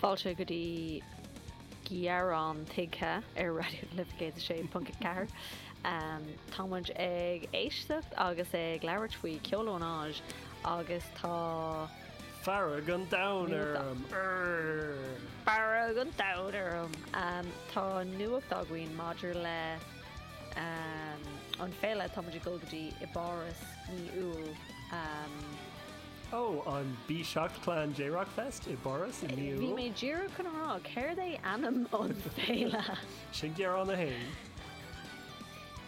Fáilte go dtí Gearán Tuigthe ar Raidió na Life 106.4. Tá muid ag éisteacht agus ag labhairt faoi ceolionaid agus tá fearg an domhain orm! Urr! Fearg an domhain orm! Tá nuacht againn maidir le an féile tá muid ag dul go dtí i bPáras mí Iúil. Ó, an B-Shock Clan J-Rock Fest i bPáras inniu. Bhí mé ag iarraidh cuimhneamh ar céard é ainm an féile. Sin gearán a haon.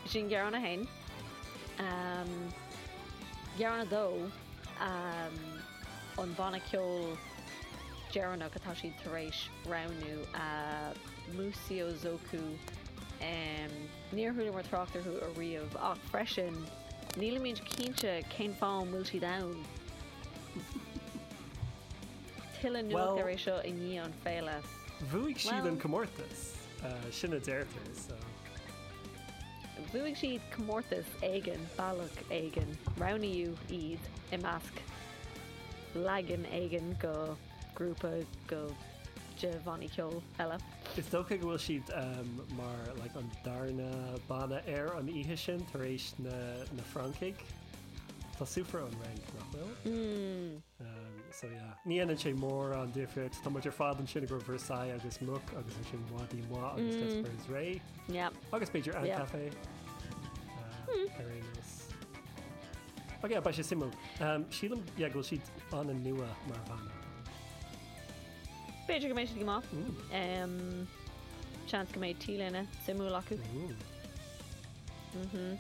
Sin gearán a haon. Gearán a dó, an banna ceoil deireanach atá siad tar éis roghnú, Museo Zoku. Níor chualamar trácht orthu ariamh, ach freisin, nílimid cinnte cén fáth an bhfuil siad ann. Tuilleadh eolais ar é seo i ndiaidh an féile. Bhuaigh siad an comórtas, sin a deirtear, so. Bhuaigh siad comórtas éigin, bealach éigin. Roghnaíodh iad i measc leagan éigin go. grúpa de bhannaí ceoil eile. Is dócha go bhfuil siad mar like an darna banna ar an oíche sin tar éis na na Francaigh. Tá siadsan ón Fhrainc, nach bhfuil? Mmm. So yeah. Ní dhéanann sé mórán difríocht. Tá muid ar fad ansin do Versailles agus Mucc agus ansin Mhadaí Mhaith agus D'espairsRay. Yep. Agus b'fhéidir An Cafe ar aon nós. Ok beidh sé suimiúil. Sílim yeah go bhfuil siad an-nua mar bhanna. B'fhéidir go mbeidh siad go maith. Seans go mbeidh T-léine suimiúil acu. Mhmm.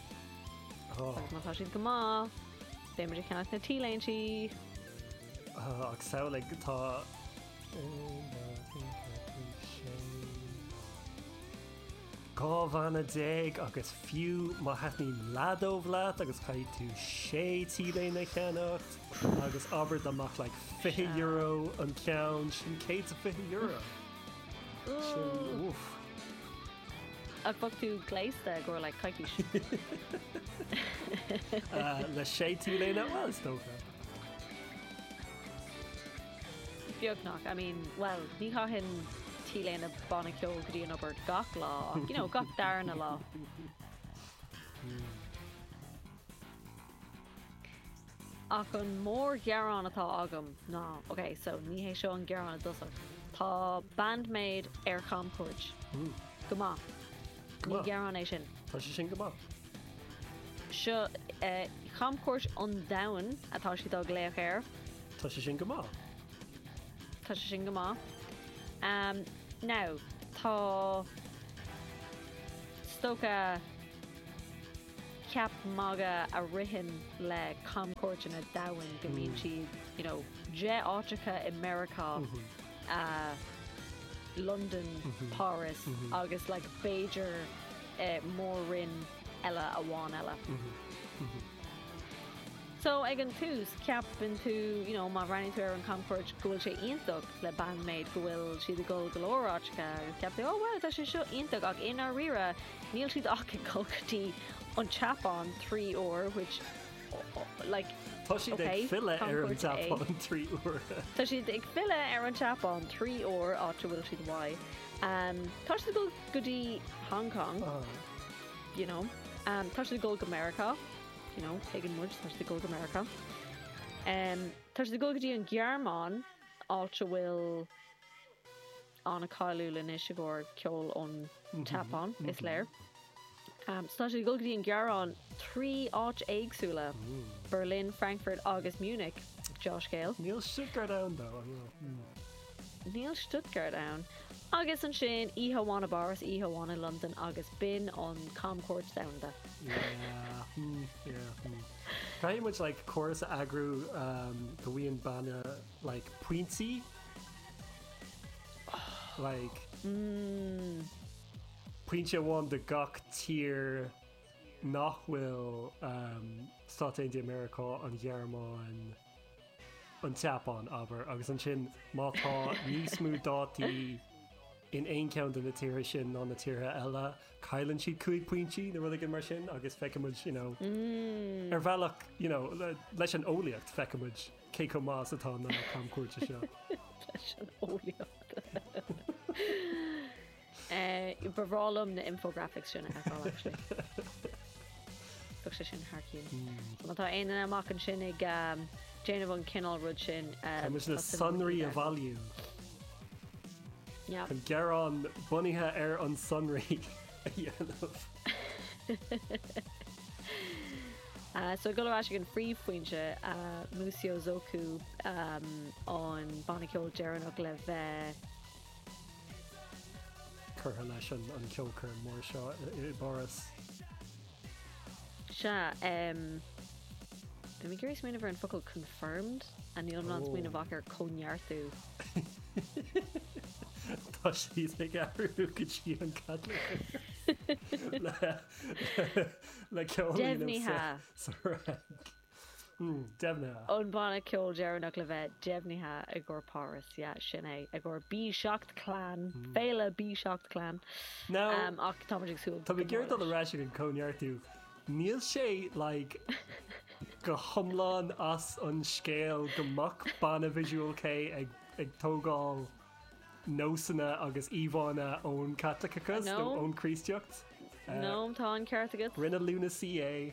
Agus má tá siad go maith, beidh muid ag ceannach na T-léinte. Ach samhlaigh tá 1, 2, 3, 4, 5, 6. Dhá bhanna déag agus fiú má thaitníonn leath dóibh leat agus caithfidh tú sé T-léine a cheannacht agus abair dá mbeadh like €20 an ceann sin €120 sin uff. Ach bheadh tú gléasta i gcomhair like coicís. Le sé T-léine bhuel is dócha. beagnach, I mean, bhuel, ní chaithfinn T-léine banna ceoil go dtí an obair gach lá ach, you know, gach darna lá. Ach an mórghearán atá agam ná, ok, so ní hé seo an gearán i dtosach, tá Bandmaid ar chamchuairt. Go maith. Go maith. Ní gearán é sin. Tá sé sin go maith. So camchuairt an domhain atá siad á glaoch air. Tá sé sin go maith. Tá sé sin go maith. Umm now tá stoc ceap magaidh a ritheann le camchuairteanna domhanda go mbíonn siad you know deich áiteacha i Meiriceá Londain, Páras agus like b'fhéidir mór-roinn eile amháin eile. So ag an tús ceapann tú you know má bhreathnaíonn tú ar an chamchuairt go bhfuil sé iontach le Band-Maid go bhfuil siad ag gol go leor áiteacha agus ceapann tú oh wow tá sé seo iontach ach i ndáiríre níl siad ach ag gol go dtí an tSeapáin trí uair which Tá siad ag filleadh ar an tSeapáin trí uair. Tá siad ag filleadh ar an tSeapáin trí uair, áit a bhfuil siad uaidh. Tá siad ag dul go dtí Hong Kong, you know. Tá siad ag dul go Meiriceá, you know, tuigeann muid, tá siad ag dul go Meiriceá. Tá siad ag dul go dtí an Ghearmáin, áit a bhfuil... an-cháiliúil anois i gcomhair ceol ón tSeapáin, is léir. Tá siad ag dul go dtí an Ghearmáin trí áit éagsúla, Berlin, Frankfurt agus Munich, dea-scéal. Níl Stuttgart ann dó, an bhfuil? Níl Stuttgart ann. Agus ansin, oíche amháin i bPáras, oíche amháin i Londain agus b'in an camchuairt domhanda. Yeah, hmm, yeah, hmm. Caithfidh muid, like, córas a eagrú go bhfaigheann banna Like pointí Like pointe amháin do gach tír nach bhfuil Stáit Aontaithe Meiriceá, an Ghearmáin, an tSeapáin, abair, agus ansin má tá níos mó dátaí in aon cheann de na tíortha sin ná na tíortha eile, cailleann siad cúig pointí nó rud éigin mar sin agus feicimid, you know, ar bhealach, you know, leis an eolaíocht, feicimid. Cé chomh maith is atá na camchuairteanna seo? Leis an eolaíocht. Ba bhreá liom na infographics sin a fheiceáil actually. Bheadh sé sin thar cionn. Má tá aon duine amuigh ansin ag déanamh an cineál rud sin Tá muid le sonraí a bhailiú. An gearán bunaithe ar an sonraí. a dhéanamh. So ag dul ar ais ag an phríomhphointe, Museo Zoku an banna ceoil deireanach le bheith. curtha leis an gceolchoirm mór seo i bPáras. Sea, em, bhí mé ag iarraidh smaoineamh ar an focal confirmed, a níl mé in ann smaoineamh ach ar cóineartú. Tá siad ag athrú go dtí an Caitliceach le ceol Deimhnithe. sa rang. deimhnithe. An banna ceoil deireanach le bheith deimhnithe i gcomhair Páras, yeah, sin é, i gcomhair B-Shocked Clan, féile B-Shocked Clan, ach táimid ag súil go mór leis. Táimid ag dul ar ais chuig an gcóineartú. Níl sé, like, go hiomlán as an scéal go mbeadh banna visual kei ag tógáil nósanna agus íomhánna ón Caitliceachas nó ón Chríostaíocht. Noam, tá an ceart agat. Rinne Luna Sea é.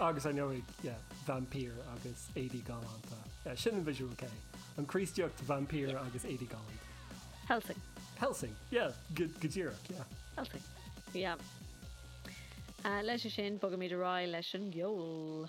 Agus ar ndóigh, yeah, vaimpír agus éadaí galánta. Yeah, sin an visual kei. An Chríostaíocht, vaimpír agus éadaí galánta. Helsing. Helsing, yeah, go díreach, yeah. Helsing, yeah. Leis sin, bogaimid ar aghaidh leis an gceol.